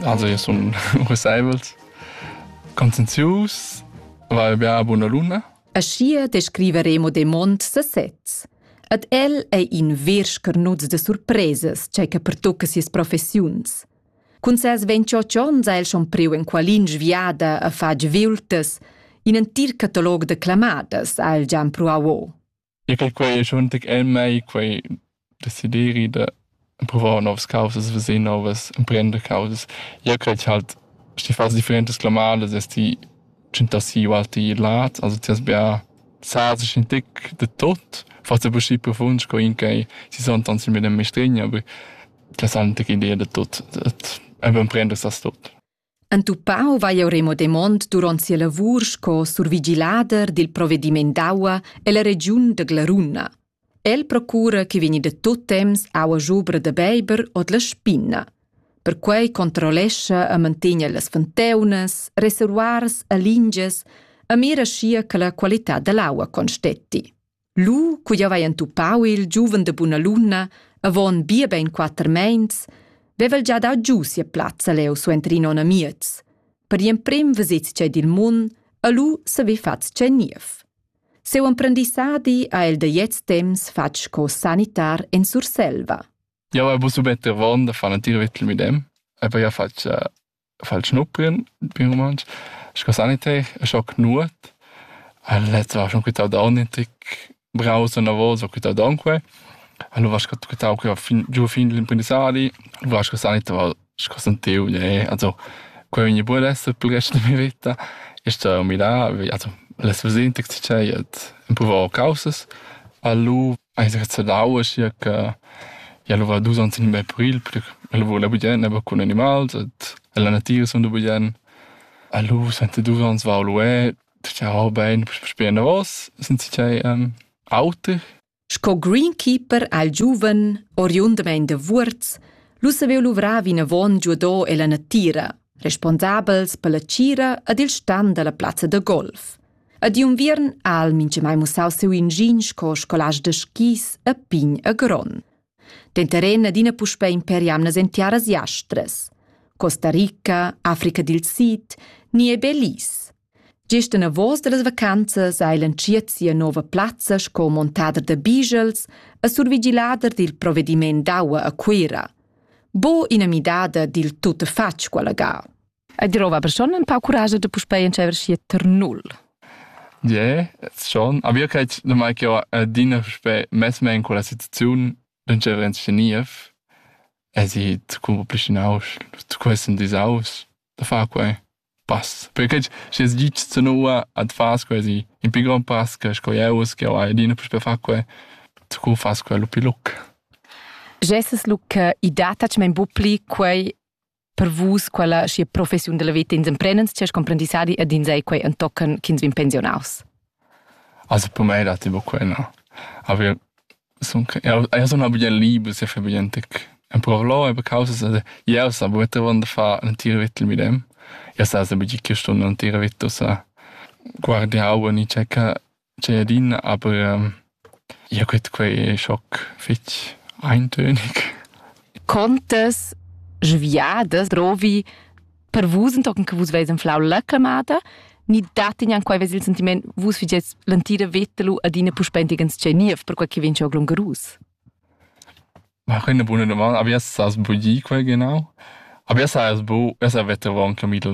Also io sun rusaivels, conscienzius, vai bia a buna luna. Aschia descriva Remo de Mont sesez. Ad el ei in vers carnuts de surpresas, cei che pertocca sias professiuns. Cun ses 28 onns ha el schon priu en qualin sviada a far viultas. In entir catalog de clamadas ha el già pruau o. E che quei è schon el mei quei desideri da pruvar novas causas, veser novas, emprender causas. Jeu cret halt, schi fas differentas clamadas es ti tschentassi ualti lat, also ti has bia sazes in tic de tot, fas aber schi profund sco in ch'ei si sontans il medem mestregn, aber ti has halt tic idea de tot, et emprender sas tot. Entupau vai jeu Remo Demont duront sia lavur sco survigilader dil provvediment d'aua ella regiun da Glaruna. El procura che vegni da tut temps aua schubra da beiber ord la spinna. Perquei controllescha e mantegna las fonteunas, reservoirs e lingias e mira schia che la qualità dall'aua constetti. Lu, cu jeu vai entupau il giuven de buna luna, avon bia bein quater meins, vevel già dau giu sia plazza leu suenter in onn e miez. Per gl'emprem vesets tgei dil mun e lu saver fatg tgei niev. Seu emprendissadi ha el da gliez temps fatg sco sanitar en Surselva. Jau hai buca subetter von da far l'entir vittel midem, aber ja fatg fa'l schnuppian pi u mantsch sco saniter e scho cnuot. E lez va schon quità d'aun ün tic braus anavos, ho quità d'aun que. Alura sco quità que fin giù fin l'imprendissadi, alura sco saniter va sco sentiu gnè, also que vegni buon esser pel rest da mia vita. E sto mirà, also l'es vesì ün tic tschei, et ün pover causas. A lu Hai sgrezchadau aschia che jeu luvra dus onns e num april perche ella vula bugen aber cun animals ed ella natira sun da bugen. E lu suenter dus onns vau lu e tgau bein sper enavos sincerei auter. Sco greenkeeper al giuven, oriundamain da Vuorz, lu saveva luvrar vinavon giudò ella natira, responsabels per la tgira ed il stan dalla plazza da golf. A di unviern ha el minchamai mussau siu ingin sco scolast da skis a pign e gron. Denteren adina puspei per jamnas en tiaras jastras. Costa Rica, Africa dil Sid, ni e Belize. Gest en avos dallas vacanzas ha el entschiet sia nova plazza sco montader da bigels e survigilader dil provediment d'aua a Cuira. Bo ina midada dil tuttafatg quella ga. E drova persona un pau curage de puspei entscheiver schi ter null. Je, schon. Aber io cred da mai che ho adina puspei mess me in quella situaziun d'entscheiver in sceniev e si zu complicinaus, zu quesen disaus, da far quei pass. Perché schi es gitsch zu nua ad fas quasi in pi grand pass che sco eu che ho adina puspei far quei, zu fas quei lu pi luc. Gesses lu che i dat tac mein bu pli quei per vus quella sia professiun della vita ins emprendens chers comprendissadi ed ins ei quei entochen ch'ins vin pensionaus Also per me dat tipo quella. Aber son io sono bien liber, se fa bien tec. En parlo e per causa io sa buete wanda fa un tiro vittel mit dem. Io sa se bigi che stunde un tiro vitto sa guardia aua ni checca Tgei adina, aber ja gut, quei è schoc fetg eintönig. Contas sviadas drovi per vus entochen che vus veis anflau la clamada, ni dat ignan quei ves il sentiment vus figies l'antira veta lu adina puspentigens tgei niev per quei che vegn schon glungerus? Ma eine buona domanda. Aber jetzt hast du budget quel genau. Aber jetzt hast du, jetzt wird der Wochenkapitel